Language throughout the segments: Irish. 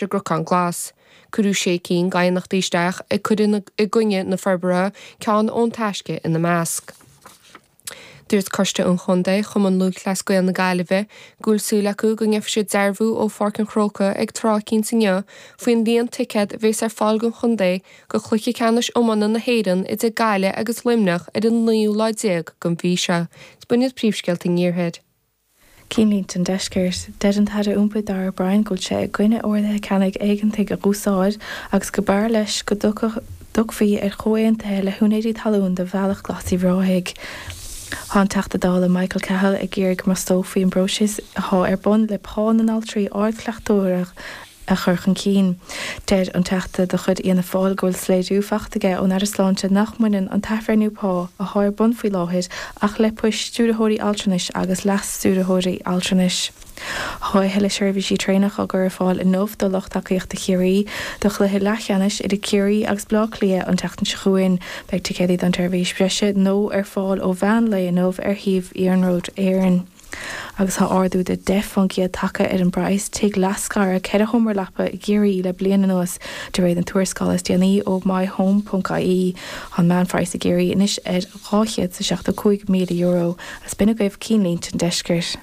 i gCnocán Glas. Cuireadh sé cinn d'aighneachtaí isteach ag cur in aghaidh na forbartha, ceann ón Taisce ina measc. Dúirt Coiste an Chontae Chumann Lúthchleas Gael na Gaillimhe go bhfuil súil acu go ngeofaidh siad dearbhú ó Pháirc an Chrócaigh ag tráth éicínt inniu faoin líon ticéad a bhéas ar fáil don chontae go Chluiche Ceannais Iomána na hÉireann idir Gaillimh agus Luimneach ar an naoú lá déag den mhí seo. Príomhscéalta an Iarthair. Cinnlínte an Deiscirt, Deir an tAire Iompair Darragh O'Brien go bhfuil sé i gcoinne orduithe ceannaigh éigeantaigh a dh'úsáid agus go mb'fhearr leis go dtiocfaí ar chomhaontaithe le húinéirí talún do Bhealach Glas Uíbh Ráthaigh. Tá an Teachta Dála Michael Cahill ag iarraidh go mbrostófaí an próiseas athá ar bun le pá na n-altraí ardchleachtóireachta a a chur chun cinn. Deir an Teachta de chuid Fhianna Fáil go bhfuil soiléiriú faighte aige ón Aire Sláinte nach mbaineann an t-athbhreithniú pá athá ar bun faoi láthair ach le poist stiúrthóirí altranais agus leas-stiúrthóirí altranais Tá athuilleadh seirbhísí traenach á gcur ar fáil inniu do lucht tacaíochta Chiarraí do chluiche leathcheannais idir Ciarraí agus Bleá Cliath an tseachtain seo chugainn. Beidh ticéadaí don tseirbhís bhreise nua ar fáil ó mheán lae inniu ar shuíomh Iarnród Éireann. Agus tá ardú de 10 faoin gcéad tagtha ar phraghas tigh leathscartha ceithre sheomra leapa i gCiarraí le bliain anuas, de réir na tuarascála is déanaí ó MyHome.ie. Tá an meánphraghas i gCiarraí anois ar €275,000, is b'in agaibh cinnlínte an deiscirt!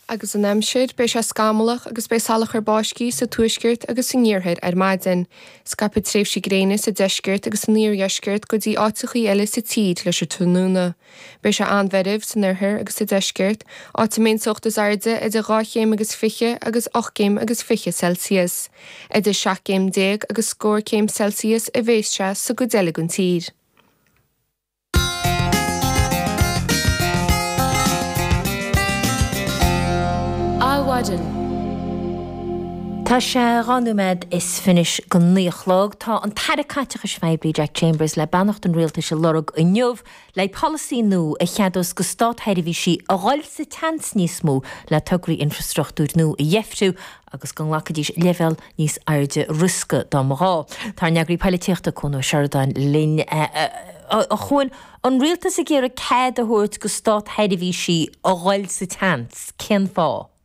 agus an aimsir, beidh sé scamallach agus beidh salachar báistí sa tuaisceart agus san iarthar ar maidin. Scaipfidh tréimhsí gréine sa deisceart agus san iardheisceart go dtí áiteachaí eile sa tír leis an tráthnóna. Beidh sé an-mheirbh san oirthear agus sa deisceart, áit a mbeidh an teocht is airde idir dhá chéim agus fiche agus ocht gcéim agus fiche Celsius. Idir seacht gcéim déag agus scór céim Celsius a bhéas sé sa gcuid eile den tír. Adhmhaidin. Tá sé dhá nóiméad is fiche go naoi a chlog. Tá an tAire Caiteachais Phoiblí Jack Chambers le beannacht an Rialtais a lorg inniu. le polasaí nua a cheadós go stát-sheirbhísí a dhul sa tseans níos mó le tograí infrastruchtúir nua a dheifriú agus go nglacfaidís leibhéal níos airde riosca dá mba ghá. Tá ár n-eagraí poilitíochta, Cuan Ó Seireadáin, linn. Cuan, An rialtas ag iarraidh cead a thabhairt go stát-sheirbhísí a dhul sa tseans, cén fáth?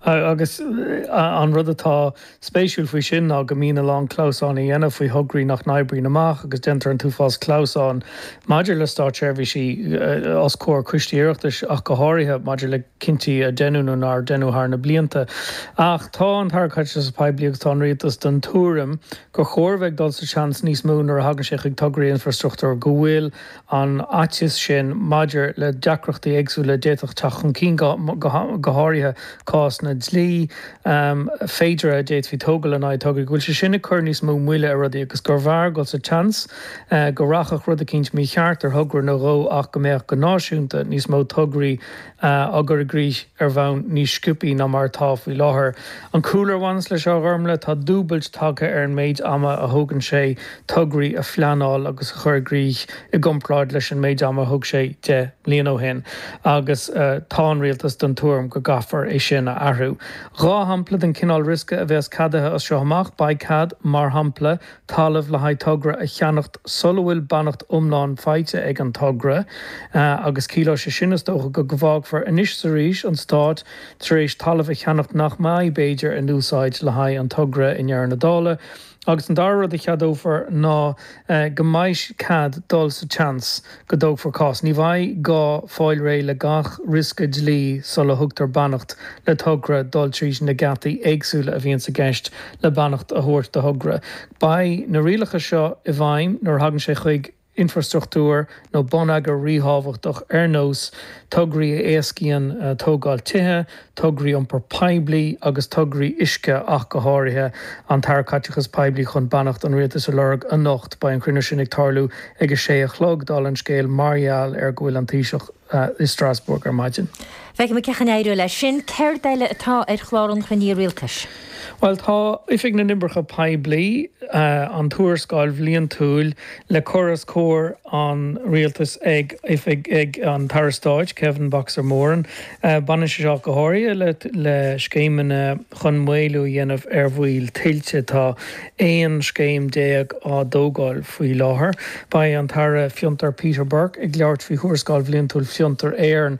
Agus an rud atá spéisiúil faoi sin ná go mbíonn a lán clamhsáin á dhéanamh faoi thograí nach n-oibríonn amach agus déantar an t-uafás clamhsáin maidir le státseirbhísí os comhair coistí Oireachtais ach go háirithe maidir le cinntí a deineadh nó nár deineadh thar na blianta. Ach tá an tAire Caiteachais Phoiblí agus tá an Rialtas den tuairim gur chóir a bheith ag dul sa seans níos mó nuair a thagann sé chuig tograí infreastruchtúir, go bhfuil an fhaitíos sin maidir le deacrachtaí éagsúla a d'fhéadfadh teacht chun cinn, go háirithe cásanna dlí féideartha a d'fhéadfaí a thógáil in aghaidh tograí, go bhfuil sé sin ag cur níos mó moille ar rudaí agus gurbh fhearr dul sa tseans go rachadh rud eicínt mícheart ar thogra nó dhó ach go mbeadh, go náisiúnta, níos mó tograí á gcur i gcrích ar bhonn níos sciobtha ná mar atá faoi láthair. An cúlra a bhaineas leis seo a Ghormlaith, tá dúbailt tagtha ar an méid ama a thógann sé tograí a phleanáil agus a chur i gcrích i gcomparáid leis an méid ama a thóg sé deich mbliana ó shin agus tá an Rialtas den tuairim go gcaithfear é sin a athrú. Dhá shampla den chineál riosca a bheas ceadaithe as seo amach, beidh cead, mar shampla, Talamh le haghaidh togra a cheannacht sula bhfuil beannacht iomlán faighte ag an togra, agus ciallóidh sé sin, is dócha, go bhfágfar anois is arís an Stát tar éis talamh a cheannacht nach mbeidh, b'fhéidir, in úsáid le haghaidh an togra i ndeireadh na dála. Agus an dara rud a cheadófar ná go mbeidh cead dul sa tseans. go dtógfar cás. Ní bheidh gá fáil réidh le gach riosca dlí sula thugtar beannacht le togra dul tríd na geataí éagsúla a bhíonn i gceist le beannacht a thabhairt do thogra. Beidh na rialacha seo i bhfeidhm nuair a thagann sé chuig infreastruchtúr nó bonneagar ríthábhachtach ar nós tograí a éascaíonn tógáil tithe, tograí iompar poiblí agus tograí uisce ach go háirithe, an tAire Caiteachais Poiblí chun beannacht an Rialtais a lorg anocht. Beidh an cruinniú sin ag tarlú ag a sé a chlog, dála an scéil, mar gheall ar go bhfuil an Taoiseach i Strasbourg ar maidin. Feicfidh muid cén chaoi a n-éireoidh leis sin. Céard eile atá ar chlár an chruinnithe Rialtais? Bhuel tá Oifig na nOibreacha Poiblí, an tuarascáil bhliantúil le cur os comhair an Rialtais ag Oifig ag an tAire Stáit, Kevin 'Boxer' Moran. Baineann sé seo go háirithe le scéimeanna chun maolú a dhéanamh ar bhaol tuilte. Tá 11 scéim á dtógáil faoi láthair. Beidh an tAire Fiontar Peter Burke ag labhairt faoi Thuarascáil Bhliantúil Fiontar Éireann